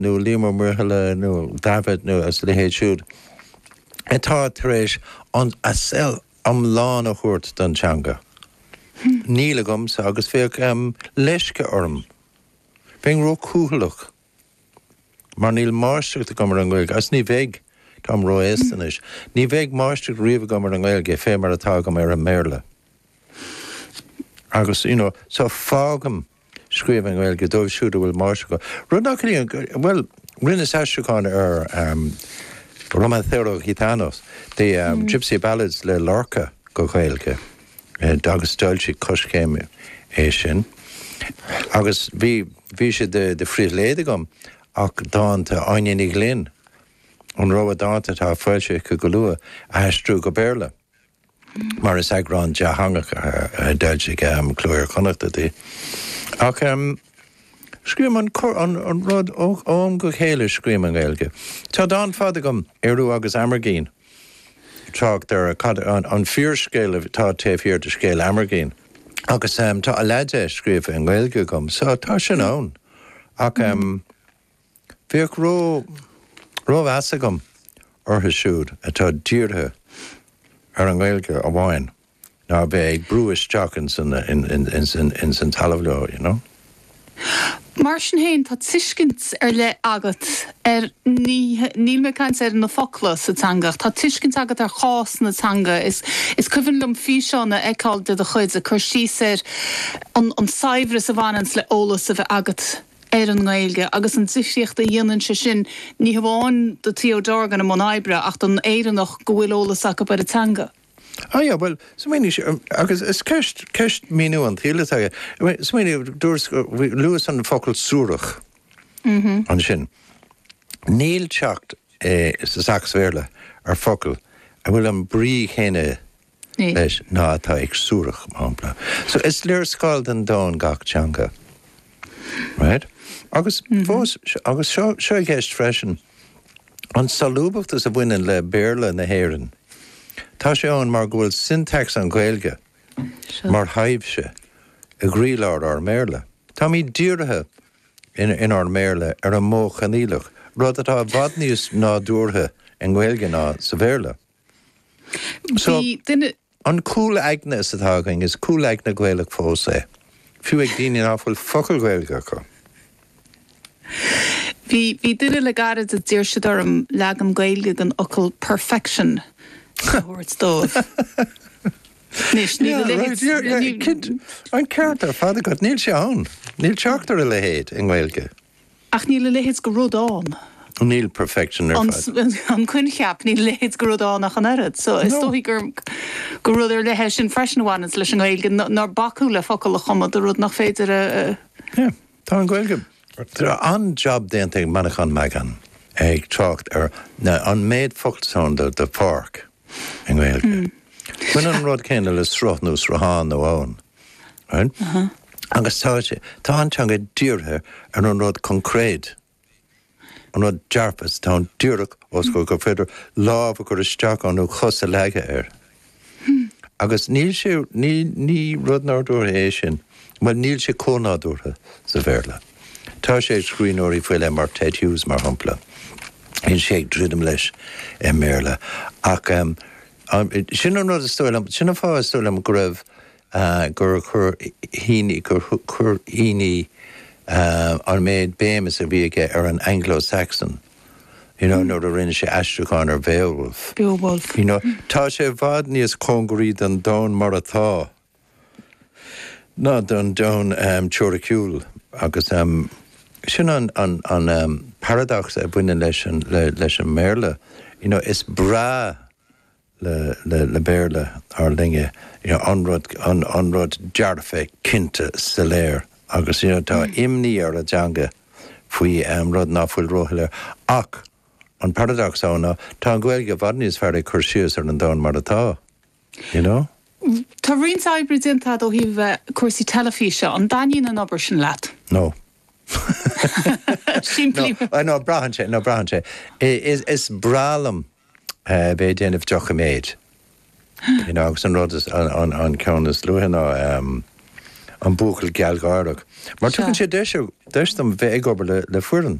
nó Liam Ó Muirthile nó Davitt nó a leithéid siúd atá tar éis a saol iomlán a thabhairt don teanga. Níl agamsa agus bheadh leisce orm, bheinn róchúthaileach mar níl máistreacht agam ar an nGaeilge agus ní bheidh, táim ró-aosta anois, ní bheidh máistreacht riamh agam ar an nGaeilge fé mar atá agam ar an mBéarla. Agus, you know, so fágaim scríobh i nGaeilge dóibh siúd a bhfuil máistreacht acu, rud nach gciallaíonn gur, bhuel, rinneas aistriúchán ar Romancero Gitano, The Gipsy Ballads le Lorca go Gaeilge agus d'fhoilsigh Coiscéim é sin agus bhí, bhí sé de phribhléid agam dánta Áine Ní Ghlinn, an rogha dánta atá le foilsiú aici go luath, a aistriú go Béarla. mar is eagrán dátheangach a d'fhoilsigh Cló Iar-Chonnachta di. Ach scríobhaim an rud ó am go chéile, scríobhaim i nGaeilge. Tá dán fada agam, 'Ériú agus Amergin', ag trácht ar cad é an fíorscéal atá taobh thiar de scéal Amergin. Agus tá a leath de scríofa i nGaeilge agam, so tá sin ann. Ach. Bheadh rómheas agam orthu siúd atá dírithe ar an nGaeilge amháin ná bheith ag brú isteach ins an talamh leo, you know. Mar sin féin, tá tuiscint ar leith agat ar nithe, níl mé ag caint ar na focla sa teanga, ach tá tuiscint agat ar chás na teanga. Is cuimhin liom físeán a fheiceáil de do chuid ag cur síos ar an saibhreas a bhaineanns le eolas a bheith agat, ar an nGaeilge agus an difríocht a dhéanann sé sin ní hamháin do Theo Dorgan i mbun oibre ach don Éireannach go bhfuil eolas acu ar an teanga. Á yeah, bhuel, smaoinigh sé, agus is ceist, ceist míniú an tsaoil atá aige, smaoinigh, dúirt, luas an focal suarach ansin. Níl teacht sa Sacs-Bhéarla ar focal a bhfuil an brí chéanna leis ná atá ag suarach, mar shampla. So, is léarscáil den domhan gach teanga. Right? Agus fós, agus seo, seo i gceist freisin, an solúbachtas a bhaineann le Béarla na hÉireann, tá sé ann mar go bhfuil syntax an Ghaeilge mar thaibhse i gcroílár ár mBéarla. Táimid dírithe in, inár mBéarla ar an modh coinníollach, rud atá i bhfad níos nádúrtha i nGaeilge ná sa Bhéarla. An cúl aigne is atá againn, is cúl aigne Gaelach fós é, fiú ag daoine ná fuil focal Gaeilge acu. Bhí duine le gairid a d'iarr siad orm leagan Gaeilge den fhocal 'perfection' a thabhairt dóibh. Anois, níl a leithéid. An ceart ar fad agat, níl sé ann. Níl teacht ar a leithéid i nGaeilge. Ach níl a leithéid de rud ann. Níl perfection ar fad. an coincheap, níl a leithéid de rud ann ach an oiread. So is dóigh gur gur rud ar leith é sin freisin a bhaineann leis an nGaeilge, nár bacadh le focail a chumadh do rud nach féidir a. Tá an Ghaeilge. Tá an-jab déanta ag Manchán Magan ag trácht ar an méid focal atá ann do pháirc i nGaeilge. Baineann an rud céanna le sruth nó sruthán nó abhann. Agus tá sé, tá an teanga dírithe ar an rud concréid, an rud dearfa, is tá an díreach ós comhair gur féidir lámh a chur isteach ann nó cos a leagadh air. Agus níl sé, ní rud nádúrtha é sin, bhuel níl sé chomh nádúrtha sa Bhéarla. Tá sé ag scríbhneoirí faoi leith mar Ted Hughes, mar shampla, bíonn sé ag druidim leis i mBéarla ach Am, sin an rud is dóigh liom, sin an fáth is dóigh liom go raibh eh, gur chuir Heaney, gur chu- chuir Heaney eh, an méid béimeas a bhí aige ar an Anglo-Saxon, you know, nuair a rinne sé aistriúchán ar Bhéowulf. Beowulf. You know, tá sé i bhfad níos cóngaraí don domhan mar atá ná don domhan teoiriciúil. Agus sin an paradacsa a bhaineann leis an mBéarla, you know, is breá le Béarla ár linne, you know, an rud dearfa, cinnte, soiléir, agus, you know, tá imní ar a dteanga faoi rud ná fuil róshoiléir. Ach an paradacsa ná tá an Ghaeilge i bhfad níos fearr ag cur síos ar an domhan mar atá. You know? Tá roinnt oibre déanta a'd ó thaobh cúrsaí teilifíse, an dtaitníonn an obair sin leat? No. Simplí. No, no, braitheann sé, no, braitheann sé. Is, is breá liom bheith ag déanamh doiciméid. You know, agus an rud is, an, an, an ceann is nuaí ná ehm, an Buachaill Gealgháireach. Mar tugann sé deis, deis dom bheith ag obair le, le foireann.